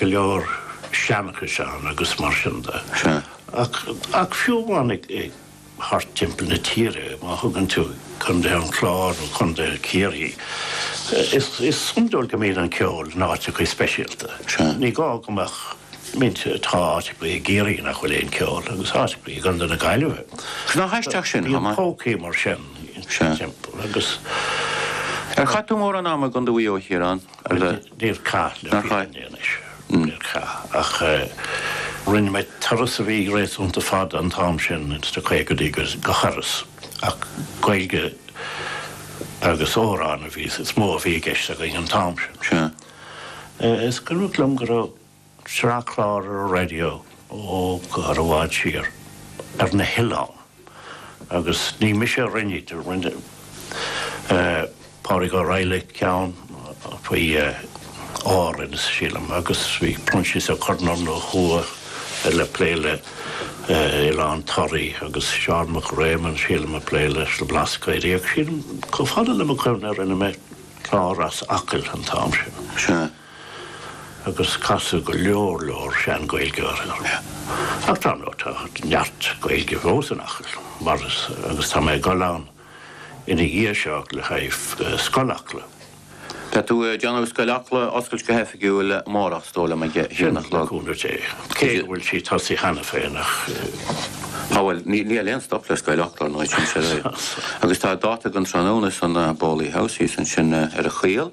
go leor seanchais ann agus mar sin de. Ach fiú amháin thart timpeall na tíre, má thógann tú Contae an Chláir nó Contae Chiarraí, is iondúil go mbíonn an ceol in áiteachaí speisialta. Ní gá go mbeadh mise, tá áiteachaí i gCiarraí nach bhfuil aon ceol agus áiteachaí i gContae na Gaillimhe. Bíonn pócaí mar sin timpeall agus. Ar chaith tú mórán ama i gContae Mhaigh Eo, a Chiaráin? Agus níor chaith le fírinne anois, níor chaith, ach rinne mé turas a bhí réasúnta fada an t-am sin sna caogadaí go hIorras, ach Gaeilge agus amhráin a bhí, is mó a bhí i gceist againn an t-am sin. Is cuimhneach liom go raibh. Sraith clár ar an raidió ó i bhfad siar, ar na hoileáin, agus ní mise a rinne iad, rinne Pádraig Ó Raghallaigh ceann faoi Árainn, sílim, agus bhí Proinsias Ó Conluain ó thuaidh ag plé le Oileán Thoraí, agus Seán Mac Réamoinn, sílim, ag plé leis na Blascaodaí, agus sílim, chomh fada le mo chuimhne, rinne mé clár as Acaill an t-am sin. agus casadh go leor leor sean-Ghaeilgeoirí orm. Ach dar ndóigh tá neart Gaeilge fós in Acaill, mar is, agus tá mé ag dul ann ina dhiaidh seo le haghaidh Scoil Acla. Tá tú ag déanamh Scoil Acla a oscailt go hoifigiúil amárach is dóigh liom, ag a haon a chlog? Sea, le cúnamh Dé. Cé go bhfuil sí tosaithe cheana féin ach. Á bhuel, níl aon stop le Scoil Acla, ar ndóigh, sin é. Agus tá dáta againn tráthnóna sa Boley House thíos ansin ar an gCaol.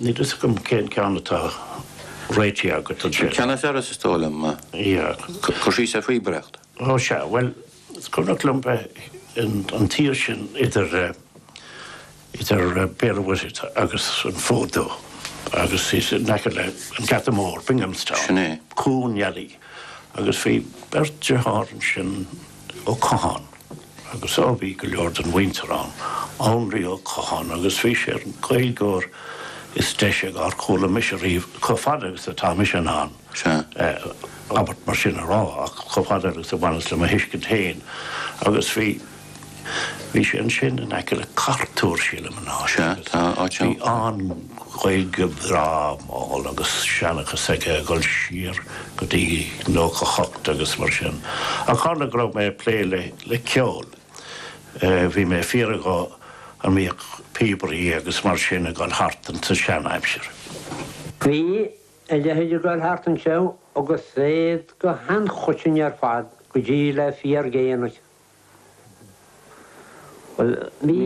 Níl fhios agam cén ceann atá réitithe agat ansin. Ceann faoi Iorras is dóigh liom. Cur síos ar phíobaireacht. Ó sea. Bhuel, is cuimhneach liom bheith ins an tír sin idir idir Béal an Mhuirthead agus an Fód Dubh agus bhíos in aice le an Geata Mór, Binghamstown. Sin é. Cuan Oilí. Agus bhí beirt deartháir ansin. Ó Catháin, agus á bhí go leor den mhuintir ann, Anraí Ó Catháin, agus bhí sé ar an nGaeilgeoir is deise dár chuala mise riamh, chomh fada agus atá mise in ann abairt mar sin a rá, ach chomh fada agus a bhaineas le mo thuiscint féin. Agus bhí, bhí sé ansin in aice le Cartúr, sílim, an áit, agus bhí an-Ghaeilge bhreá mhall agus seanchas aige ag dul siar, go dtí 98 agus mar sin ach tharla go raibh mé ag plé le ceol, bhí mé ag fiafraí an mbíodh píobairí agus mar sin ag dul thart in sa seanaimsir. Bhí a leithéid ag dul thart ansin agus iad go han-choiteann ar fad go dtí le fíordhéanaí. Bhuel bhí,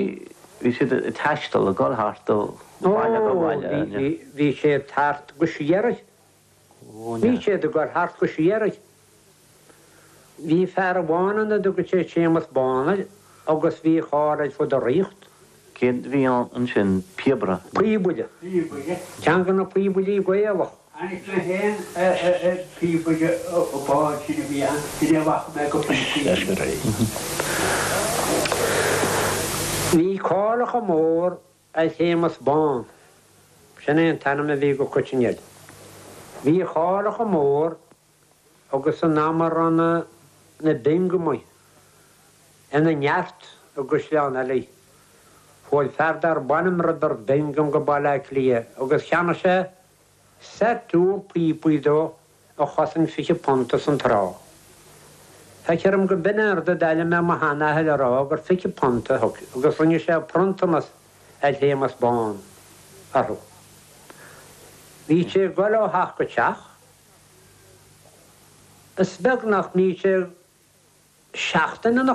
bhí siad ag taisteal, ag dul thart ó bhaile go baile. Ó bhí, bhí siad thart go síoraí. Bhí siad ag goil thart go síoraí. Bhí fear amháin ann a dtugadh sé Séamus Bán air agus bhí a cháil ar fud na ríochta. Cé bhí ann ansin? Píobaire. Píobaire. Píobaire. Ceann de na píobairí Gaelach. Tháinig mé féin ar phíobaire bán sin a bhí ann, sin é a bhfaca mé go pointe. Bhí cáil chomh mór ar Shéamus Bán, sin é an t-ainm a bhí go coiteann air. Bhí a cháil chomh mór agus san am a raibh na Biongamaigh ina neart i gCaisleán Eilí. Bhuail fear dar b'ainm Roibeard Bingham go Baile Átha Cliath agus cheannaigh sé, Set píopaí dó a chosain £20 san tráth. Feicthear dom gurb in é an rud a d'airigh mé mo shean-athair a rá gur £20 a thug agus rinne sé pronntanas ar Shéamus Bán orthu. Bhíodh sé ag goil ó theach go teach. Is beag nach mbíodh sé seachtain ina.